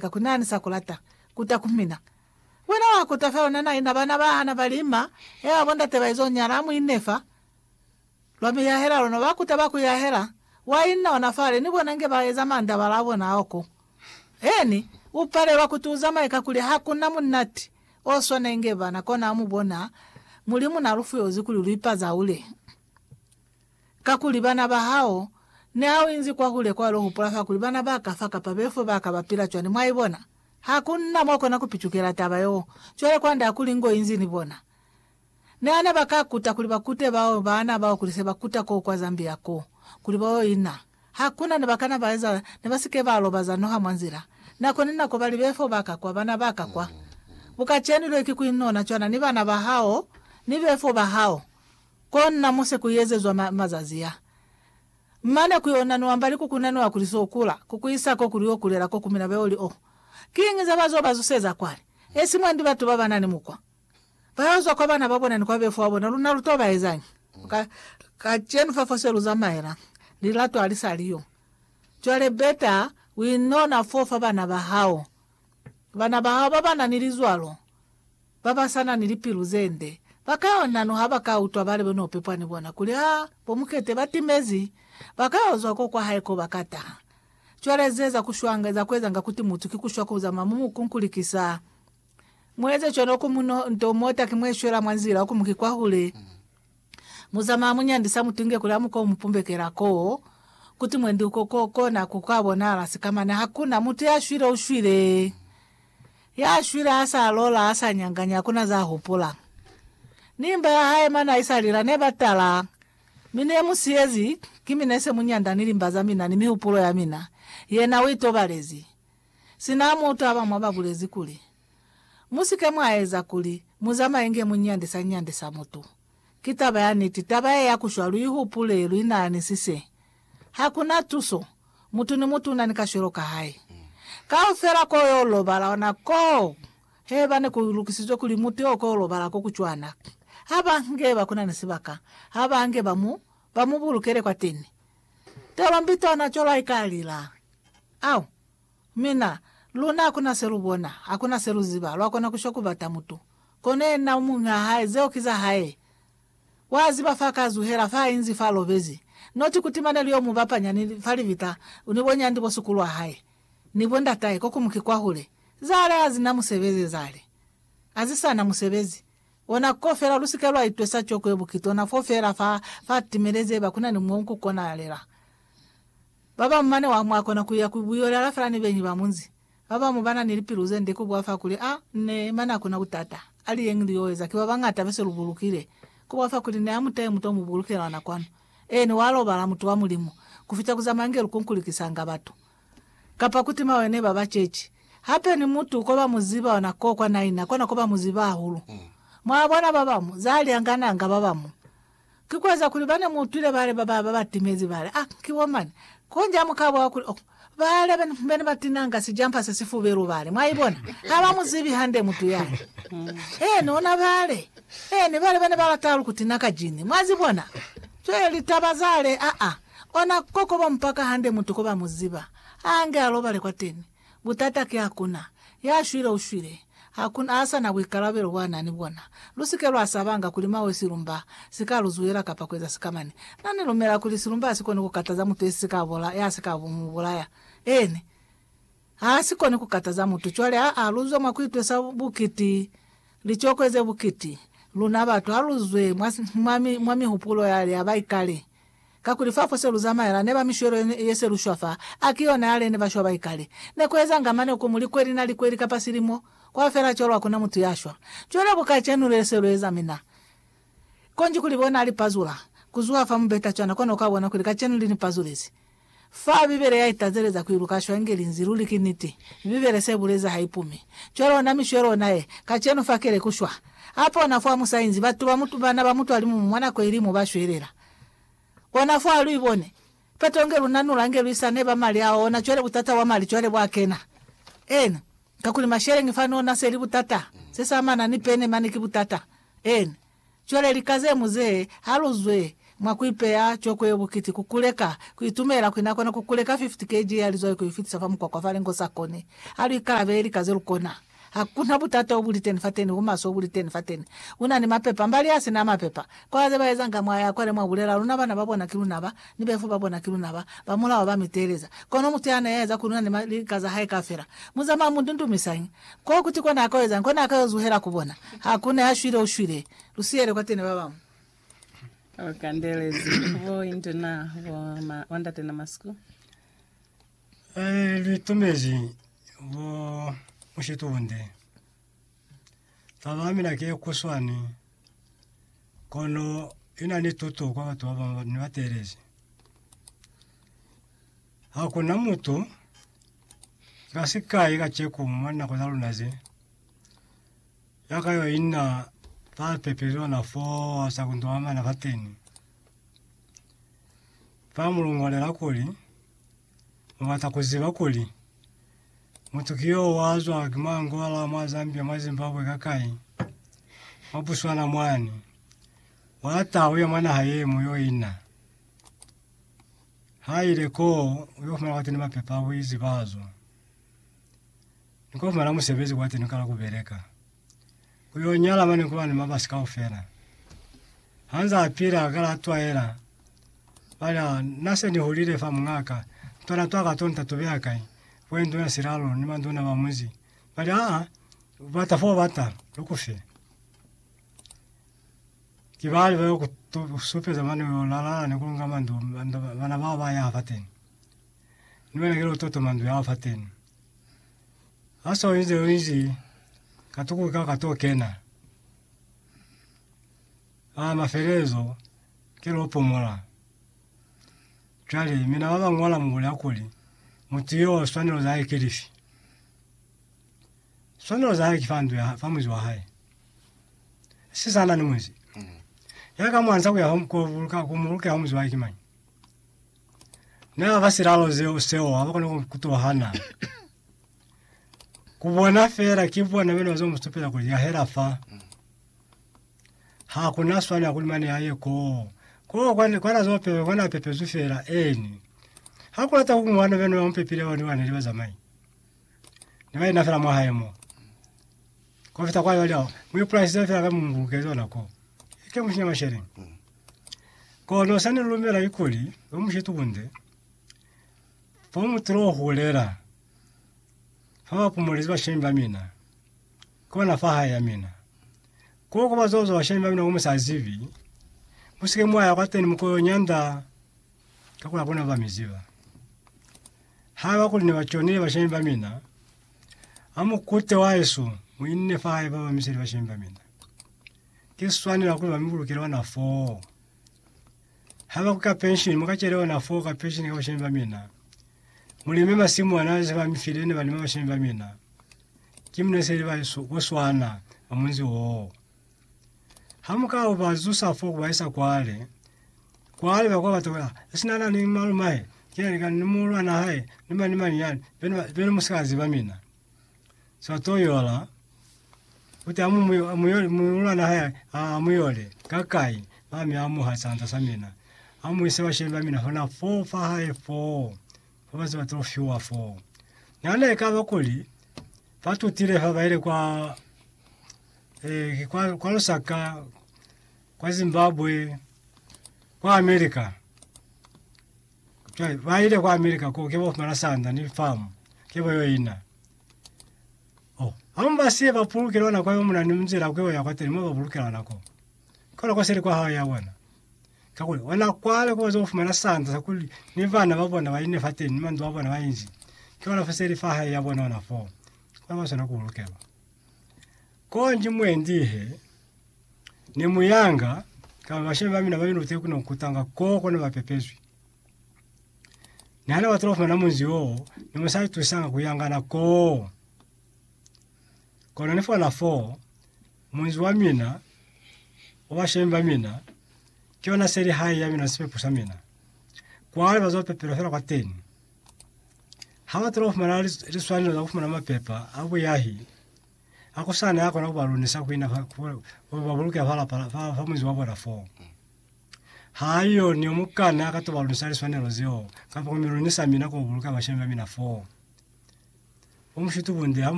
Ka ku nani sa ku lata kuta ku mina. Wena wa kuta fela una naina bana ba hana ba lima, eba bo ndate ba izo nyala, muine fa. Lwa mi yahela lona, ba kuta ba ku yahela, wa inna ona fale, ni bona nge ba eza mandabala a bona ao ko. Eeni, u palelwa kuti u zamaye kakuli ha ku na munati o swana inge bana, kona mu bona, Mulimu na lu fuyozi kuli lu ipazaule. Kakuli bana ba hao, niha u inzi kwahule kwalo hupula fa kuli bana ba ka fa kapa befo ba ka ba pila cwani, mwaibona. Ha ku na mwa kona ku picukela taba yeo. Cwale kwand'a kuli ngo inzi ni bona. Niha ne ba ka kuta kuli ba kute bao baana bao kuli se ba kuta koo kwa Zambia koo, kuli ba yo ina, ha ku na ne ba kana ba eza, ne ba si ke ba lobaza noha mwa nzila. Nako ni nako ba li, Befo ba ka kwa, bana ba ka kwa. Bukacenu lwe ki ku inona cwana ni bana ba hao ni befo ba hao. Kona muse kuiezezwa ma, mazazi a. Mane kuionaniwa mbali kukunaniwa kuli so kula, kukuisa ko kuli yo kulela ko kumina beo li o. Kiñi za bazo ba zuseza kwani? Esi mwandi batu ba banani mukwa. Ba yo zwa kwa bana ba bona ni kwa befo wa bona, luna lu to ba ezañi? Ka, kacenu fa fose lu zamaela, lilato ali sa li yo. Cwale beta uinona fo fa bana ba hao. Bana ba hao babana ni lizwalo babasana ni lipilu zende bakay'o nano haba ka utwa balebe no pepwa ni bona kuli ha bo Mukete ba timezi, bakay'o zwa ko kwa hae ko ba ka taha. Cwale zeza ku shwanga, eza kuezanga kuti mutu ki kushwa ku zamaya mu mukunkulikisa. Mueze cwalo ku muno nto mota ki mwe shwela mwa nzila, oku muki kwahule. Muzama munyandisa mutunge kuli amuka umupumbekela koo kuti mwendi uko ko kona ku ka bonahala sika mane hakuna mutu ya shwile ushwile ya shwile ha sa lola ha sa nyanganya hakuna za hupula ni mba ya hae mane aisa lila ne ba tala mi ne mu siyezi ki mi nese munyanda ni limba za mina ni mihupulo ya mina yena u itobalezi sina mutu abamwa ba bulezi kuli Mu si ke mwa eza kuli mu zamaye nge mu nyandisa nyandisa mutu. Ki taba ya niti, taba ye ya ku shwa, lu i hupule, lu inaanisise. Ha ku na tuso. Mutu ni mutu u na ni kashwelo ka hae. Kaufela ko yo lobala ona koo! Heba ne ku lukisizwe kuli mutu yo ko lobala ko ku cwana, ha ba nge ba ku na ni sibaka ha ba nge ba mu, ba mu bulukele kwateni. Tolombi tona cwalo ha i ka lila. Au! Mi na, luna hakuna se lu bona, hakuna se lu ziba, lwa kona ku shwa ku bata mutu. Kono yena u muñ'a hae, zeo ki za hae. Wa ziba fa ka zuhela, fa a inzi, fa a lobezi. Noti kuti mane li yo mu bapanya ni, fa libita, ni bo nyandi bo suku lwa hae, ni bo ndatahe, ko ku mu ki kwahule. Zale ha zi na musebezi, zale. A zi sa na musebezi. Ona ko fela, lu si ke lwa itwesa coko ye bukitona fo fela fa, fa timelezi haiba kuna ni mo ku konahalela. Babamu mane wa mwa kona kuya ku buyo lala fela ni beñi ba munzi. Babamu ba na ni lipilu ze nde ku bwa fa kuli, A ne, mane ha ku na butata. A li yeñi li yo eza, ki ba bañata be se lu bulukile. Ku bwa fa kuli, Ne a mu tahe mutu o mu bulukile lwa nakwanu. Eeni, wa lobala, mutu wa Mulimu, ku fita ku zamaya nge lu kunkulikisanga batu, kapa ku tima wene ba ba ceci. Hape ni mutu ko ba mu ziba ona ko kwa naina, kona ko ba mu ziba hahulu. Mwa bona, babamu, za li angananga babamu. Ki kueza kuli bane muutwile bale baba babatimezi bale, Ah, ki bo mani. Konji hamukabwa kuli, Oh, bale bene batinanga sijampa se sifubelu bale. Mwaibona? Habamuzibi hande mutu yani. Eeni, ona bale. Eeni, bale bane balata halu kutina ka jini. Mwazibona? Cwale litaba zale, a-a. Ona koko bompaka hande mutu kobamuziba. Haange alobale kwateni. Butata ki hakuna ya shwile u shwile, hakuna a sa na buikalabelo bwa na ni bona. Lu si ke lwa sabanga kuli mawe silumba si ka lu zuhela kapa ku eza sikamani. Na ni lumela kuli silumba ha si koni ku kataza mutu ye si ka bola, ya si ka mu bulaya. Eeni. Ha si koni ku kataza mutu. Cwale ha, ha lu zwe mwa ku itwesa bukiti, licokwe ze bukiti, luna batu ha lu zwe mwa, mwa mi, mwa mihupulo yale ya baikale. Kakuli fa fo se lu zamaela neba mishwelo ye, ye se lu shwa fa, a ki yona yale ne ba shwa ba ikale. Ne ku ezanga mane ku mu likweli na likweli kapa silimo, kwa fela cwalo hakuna mutu ya shwa. Cwale ku kacenu le se lu eza mina, konji kuli bona a li pazula, ku zuha fa mubeta cwana, kono kwa bona kuli kacenu li ni pazulezi. Fa Bibele ya itateleza ku iluka shwa nge linzi luli ki niti. Bibele se buleza ha ipumi. Cwale ona mishwelo ona ye kacenu fa keleku shwa. Apa ona fo amusainzi batu ba mutu bana ba mutu alimumu mwa nako ili mo ba shwelela. Ona fo alu ibone. Peto nge lu nanula nge lu isa neba mali ao ona cwale butata bwa mali cwale bwa kena. Eena. Kakuli masheleñi fani ona seli butata. Se sa mana ni pene mane ki butata. Eena. Cwale lika ze mu ze aluzwe mwa ku ipeya coko yo bukiti ku kuleka, ku itumela kwi na kona ku kuleka 50 kg ya lizwai ku i fitisa fa mukwakwa fa lingo sa koni. Ha lu ikalabele lika ze lu kona. Ha ku na butata o buli teni fateni, bumaswe o buli teni fateni. U na ni mapepa, mbali a si na mapepa. Kwa ze ba ezanga mwa ya kwale mwa bulela, Luna bana ba bona ki luna ba, ni befu ba bona ki luna ba, ba mulao ba mi teeleza. Kono mutu ya na ya eza kuli una ni lika za hae kafela. Mu zamaya mu ndundumisañi? Kwa kuti kona a ka ezañi? Kona a ka yo zuhela ku bona. Ha ku ne ha shwile, u shwile. Lu siyele kwa tene ba bañwi. Lu kandelezi bo indu na, bo ma, bo ndate na masiku. Ee, lu tumezi bo mushitunde. Taba ya mina ki ye kuswani, kono i na ni tuto kwa batu ba bañwi ba ne ba teelezi. Hakuna mutu ka sikai kaceko mwa nako za luna ze, ya ka yo inna fa pepeli ona fo sa kundulamana fateni. Fa mu lungolela kuli, Mu bata ku ziba kuli, mutu ki yo wa zwa ki mwa Angola, mwa Zambia, mwa Zimbabwe, ka kai, mwa Botswana mwani, wa ta uya mwa naha ye mu yo inna. Ha ile koo, u yo fumana kwateni mapepa a buizi ba zo. Ni ko fumana musebezi kwateni, u kala ku beleka. Ku yo nyala mane ku ba ni mabasi kaufela. Ha nza a pila, a kala a twaela. Ba li, Ah, na se ni hulile fa muñaa ka. Ntwana twa ka to nta to beya kai? Kwe nduna Silalo ni manduna ba munzi ba li, Ah, u bata fo u bata, lu ku fe. Ki bani ba yo ku tu, ku supeza mane yo lalala ni ku lunga mandu banda ba- bana bao ba yaha fateni? Ni wena ki lototo mandu yao fateni. Ha so inze yo inzi, ka tuku ka ka to kena. A mafelezo, ki lo pumola. Cwale, mina ba ba ñola mu bule hakuli, mutu yo, swanelo za hae ki lifi? Swanelo za hae ki fa ndu ya hae, fa muzi wa hae. Si sa na ni muzi. Ya ka mwanza ku ya ho ku buluka ku muluka ho muzi wa hae ki mañi? Na ba silalo zeo seo ha ba kona ku kutohana. Ku bona fela ki bona bena zo mustupela ku ya hela fa. Ha kuna swana ku mane ya ye ko. Ko kwa kwa na zo pepe kwa na pepezu fela eni. Ha ku lata ku ngwana bena ba mpepile ba ni ba ne ba zamai. Neba ina fela mwa hae mo. Ko fita kwa yo leo. Mu ipulasi za fela ka mungu ke zona ko. Ke mu shinya mashele. Ko no sani lumela ikuli ba mu shitu bunde. Fa mu tlo hulela. Fa ba pumulezi ba shemba mina. Ko na fa hae ya mina. Ko ko ba zozo ba shemba mina ko musazivi. Musike mwaya kwa teni mukoyo nyanda. Ka kuli abona ba mi ziba. Ha ba kuli ne ba conile bashemi ba mina, ha mu kute wa eso, mu inne fa hae ba ba miseli bashemi ba mina. Ki swanela kuli ba mi bulukele ona foo. Ha ba ku ka penshini, mu ka cele ona foo ka penshini ka bashemi ba mina. Mu lime masimu ana ze ba mi file ne ba lima bashemi ba mina. Ki mu neseli ba eso, ku swana, ba munzi oo. Ha mu ka ba zusa fo ku ba isa kwale, kwale ba kwa bata kwela sina na ni malumahe, kile likani ni muulwana hae, ni mani ni mani yani, bene ba- bene mu si ka ziba mina. So a to yola, uti amu mu yo- mu yole muulwana hae a mu yole, ka kai? Ba mi amuha sanda sa mina, a mu ise bashemi ba mina hona fo fa hae foo, fa ba ziba to fiwa foo. Nana ekaba kuli ba tutile fa ba ile kwa eh, kwa, kwa Lusaka, kwa Zimbabwe, kwa America. Cwale ba ile kwa America ko ke ba fumana sanda ni farm ke ba yo ina. Oh, hamu ba siye ba pulukela ona kwa yo muna ni mzela kwe ya kwa tele mo ba pulukela ona ko. Kola kwa sele kwa hawa ya bona. Ka kule ona kwale ko zo fumana sanda sa kuli ni bana ba bona ba ine fa teni ni mandu a bona ba inzi. Ke ona fa sele fa hae ya bona ona fo. Kwa ba sona ku pulukela. Konji mwendi he ne mu yanga kaba bashemi ba mina ba minute ku ne kutanga koko ne ba pepezwi. Ne hane batula fumana munzi wo ne mu sa itusanga ku yangana ko. Kono ni fona fo munzi wa mina wa bashemi ba mina ke yona seli hae ya mina ni sipepo sa mina. Kwale bazo pepelwa fela kwa teni. Hañata lwafumana liswanelo za kufumana mapepa a buyahi a kusana ya kona kubalunisa kuina fa, ku babuluke fa lapa fa, fa muzi wa bona fo. Haiyo ni omukana ka tubalunisa liswanelo zeo, kapa kumilunisa mina kubabuluka bashemi ba mina fo. Umushuti bunde